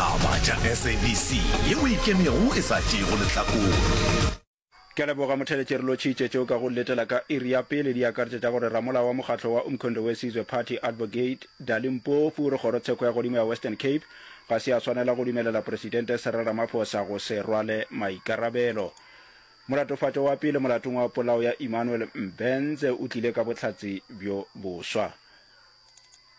Taba tša SABC ye o ikemego e sa tšeego lehlakore. Ke a leboga Motheletši re lotšhitše tšeo ka go letela ka iri ya pele di akaretša tša gore ramolao wa mokgatlo wa Umkhondo Wesizwe Party Advocate Dali Mpofu go kgoro tsheko ya godimo ya Western Cape ga se a swanela go dumelela Presidente Cyril Ramaphosa go se rwale maikarabelo Molatofatšo wa pele molatong wa polao ya Emmanuel Mbenze o tlile ka bohlatse bjo boswa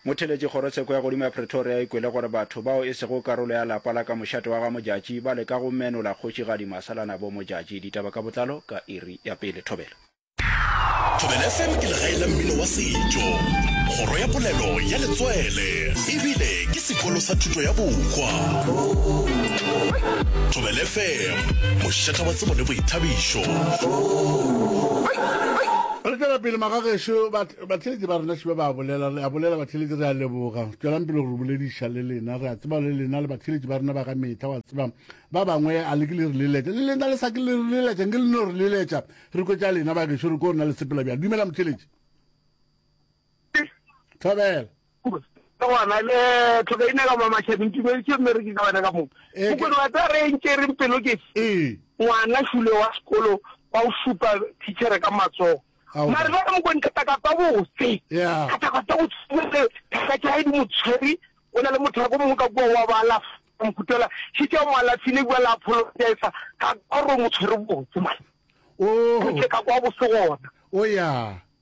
Motheeletši Kgorotsheko ya godimo ya Pretoria e kwele gore batho bao e sego karolo ya lapa la ka mošate wa ga Modjadji ba leka go menola kgošigadi Masalana bo Modjadji. Ditaba ka botlalo ka iri ya pele. Thobela. Thobela FM ke legae la mmino wa setšo, kgoro ya polelo ya letswele e bile ke sekolo sa thuto ya bohwa. Thobela FM, mošetha wa tsebo le boithabišo. Re tšwela pele, magagešo ba. Batheletši ba rena šibe ba a bolela, re a bolela batheletši, re a leboga. Tšwelang pele go re bolediša le lena, re a tseba le lena le batheletši ba rena ba ka mehla, wa tseba. Ba bangwe a le ke le re leletša, le lena le sa ke le re leletša, nke le no re leletša, re kwetša lena bagešo, re ko rena le sepela bjang. Dumela motheletši. Thobela. Ke gona le tlhokaina ka mo mašabeng ke boeditše mme re ke ka wena ka moo mokone wa tsa re ntše reng pelo ke ngwana šule wa sekolo ba o šupa teachere ka matsogo mare ba mokone katakata botse katakata botse ka tša di motshwari o na le motho wa ko mongwe ka kua wa ba alafa mokutela se tša mo alafile bua la apologiza ka gore motshwari botse mane o ka kwa bosegona o ya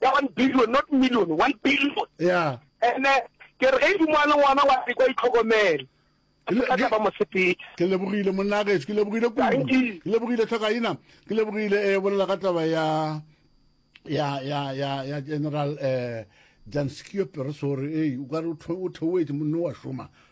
ya one billion not million one billion yeah ene ke re ge dimo a le ngwana wa se kwa itlhokomele ka ba mosepedi ke lebogile monnagetso ke lebogile kudu ke lebogile tlhokaina ke lebogile e bolela ka taba ya ya ya ya ya general eh janskio peresore e o ka re o theoetse monno wa šoma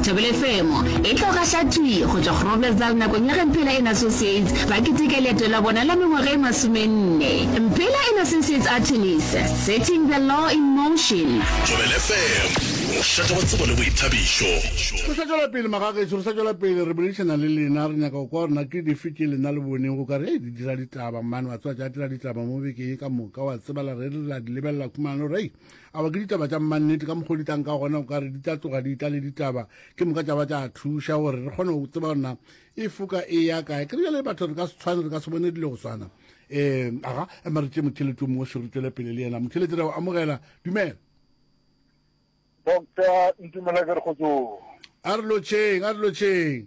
Thobelefemo e tlo gahla thwi go tšwa Groblersdal nakong ya ge Mphela and Associates ba keteka leeto la bona la mengwaga e masomenne. Mphela and Associates Artemis, Setting the Law in Motion. Thobelefemo, mošate wa tsebo le boithabišo. Re sa tšwela pele magagešo, re sa tšwela pele, re boledišana le lena, re nyaka go kwa gore na ke dife tše lena le boneng go ka re, hei, di dira ditaba, mmane wa tswatša a dira ditaba mo bekeng ye ka moka, wa tsebala, re rile ra di lebelela khumalo, re, hei, Awa ke ditaba tša mmannete ka mokgwa o di tlang ka gona o ka re di tla tloga di tla le ditaba ke moka tša ba tša thuša gore re kgone go tseba gore na e foka e ya kae ke re bjale batho re ka se tshwane re ka se bone dilo go tshwana um aga ema re tše motšhelete o mongwe se re tswele pele le yena motšhelete re o amogela dumela doctor ntumela ke re kgotsong a re lotšheng a re lotšheng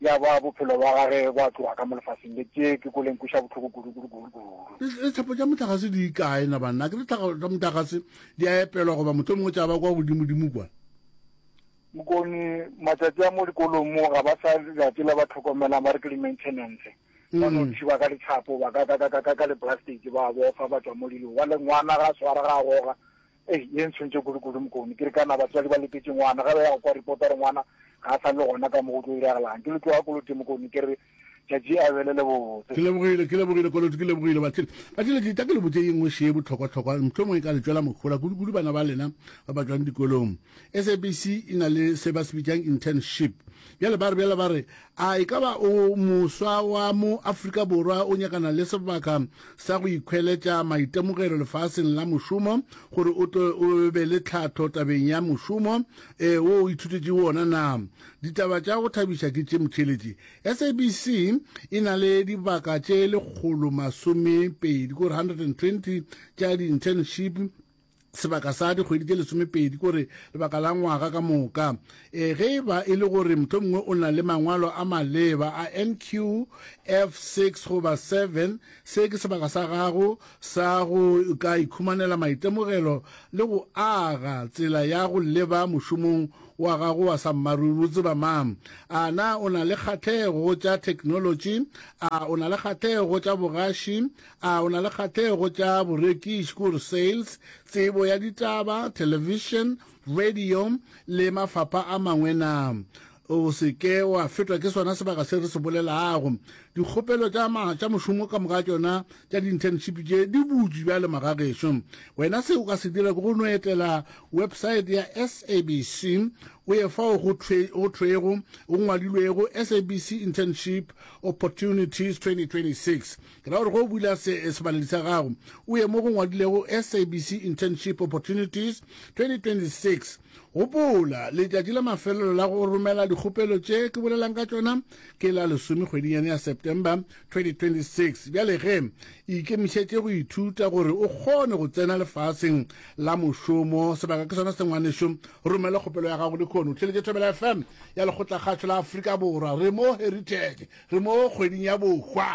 Ya ba bophelo bja gage bo a tloga ka mo lefaseng le. Tše ke kole nkweša bohloko kudu, kudu, kudu, kudu. Le, letlhapo tša mohlagase di kae na banna? Ke letlhapo tša mohlagase di a epelwa goba mohlomongwe tša ba kwa godimodimo kwa? Mokoni, matšatši a mo dikolong mo ga ba sa dira tše le ba tlhokomelang ba re ke di-maintenance. Ba no thiba ka letlhapo, ba ka, ka, ka, ka, ka, ka le-plastic ba bofa ba tšwa mo dilong. Wa le ngwana ga a swara ga a goga. Ei, ye ntshwentše kudu kudu Mokone. Ke re ka na batswadi ba letetše ngwana, ge ba ya go kwa report gore ngwana ga a sa le gona ka mo go tlo diragalang. Ke le tloga Koloti Mokone, ke re tšatši a be le le botse. Ke lebogile, ke lebogile Koloti, ke lebogile. Bathile, bathile ke tla ke le botše ye nngwe še ye bohlokwa-hlokwa, mohlomongwe e ka le tšwela mohola kudu kudu bana ba lena ba ba tšwang dikolong. SABC e na le se ba se bitšang internship bjale ba re bjale ba re a e ka ba o moswa wa mo Afrika Borwa o nyakana le sebaka sa go ikhweletša maitemogelo lefaseng la mošomo gore o tlo o be le tlhatho tabeng ya mošomo e wo o ithutetše wona na ditaba tša go thabiša ke tše motšheletše SABC e na le dibaka tše lekgolo masome pedi kore 120 tša di-internship sebaka sa dikgwedi tše lesomepedi kore lebaka la ngwaga ka moka e ge e ba e le gore motlho mongwe o na le mangwalo a maleba a nqf 6 goba 7 se ke sebaka sa gago sa go ka ikhumanela maitemogelo le go aga tsela ya go leba mošomong wa gago wa sa mmaruri o tseba mang a na o na le kgathego tša thekenolotši a o na le kgathego tša bogaši A o na le kgahlego tša borekiši, kore sales, tsebo ya ditaba, television, radio le mafapha a mangwe na? O se ke wa fetwa ke sona sebaka se re se bolelago. Dikgopelo tša ma tša mošomo ka moka tšona tša di-internship tše di butšwe bjale magagešo. Wena se o ka se dira ke go no etela website ya SABC o ye fao go thwe go thwego go ngwadilwego SABC Internship Opportunities 2026. Ke ra gore ge o bula se sebaledi sa gago, o ye mo go ngwadilego SABC Internship Opportunities 2026. Gopola, letšatši la mafelelo la go romela dikgopelo tše ke bolelang ka tšona ke la lesome kgwedinyane ya September 2026. Bjale ge, ikemišetše go ithuta gore o kgone go tsena lefaseng la mošomo. Sebaka ke sona se ngwanešu. Romela kgopelo ya gago lehono. O theletše Thobela FM ya Lekgotlakgašo la Afrika Borwa. Re mo Heritage. Re mo kgweding ya bohwa.